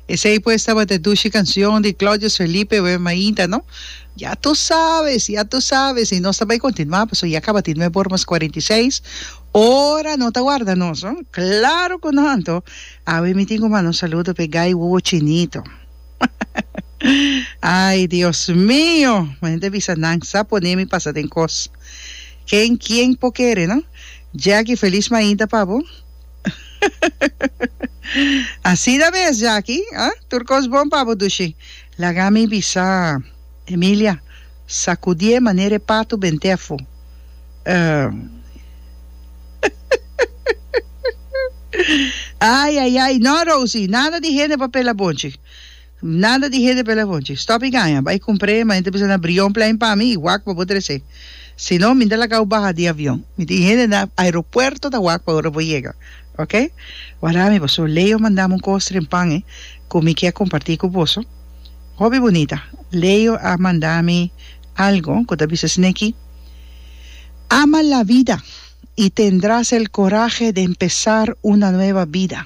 Esei pues tabata e dushi cancion di Claudius Felipe Web Mainta no. Ya tu sabes, ya tu sabes. Y nos ta bay continua paso ya cabatin me por mas 46 ora no ta warda nos no. Claro cu no anto. Awe mi tin cu manda un saludo pe Guy Wuwo Chinito. Ay Dios mio. Manen ta bisa nan sa pone mi pasa den cos. Ken kien po kere no. Jackie feliz Mainta pa bo. Así ta bes, Jaki, ah? Tur cos bon pa bo dushi. Laga mi bisa, Emilia, sacudié manera e patu ben tefo. Ay, ay, ay, no, Rosie, nada di hende papel a bonchi. Nada di hede pela voce. Stop y gaña. Bay cumpr'e, ma enta bisa na bria un plein pa mi y wak pa bo trece. Si no, mi ta laga'w baha di avion. Mi tin hende na aeropuerto ta wak pa ora bo yega. Ok? Wardá mi paso. Leo manda'm un cos den pan e cu mi kier comparti cu boso. Hopi bunita. Leo a manda mi algo cu ta bisa sneki. Ama la vida y tendras el coraje de empezar una nueva vida.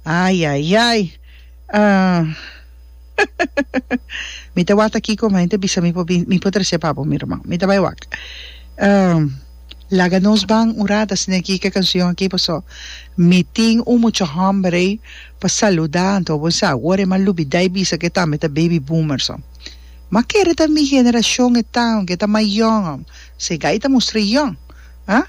Ai ai ai mi ta wak aki como hende bisa mi por bin mi por trece pa bo mi hermano mi ta bay wak laga nos ban un rat asina aki ke cancion aki pasobra mi tin un mucha hombre pa saluda anto bo sa awor e m'a lubida e bisa ke tambe ta baby boomer so m'a kere ta mi generacion e tan ke ta mayor segai ta mustra young ah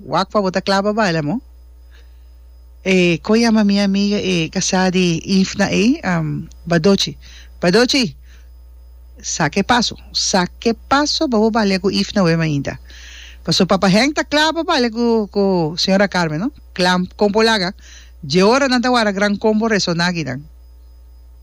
Wak pa bo ta kla pa baila mo. E kon yama mi amiga e kasá di Ifna ei? Badochi. Badochi! Sa ke paso. Sa ke paso pa bo balia ku Ifna wei mainta. Paso Papa Henk ta kla pa balia ku ku señora Carmen no. Kla kon por laga. Dje ora nan ta wara gran kombo resoná akinan.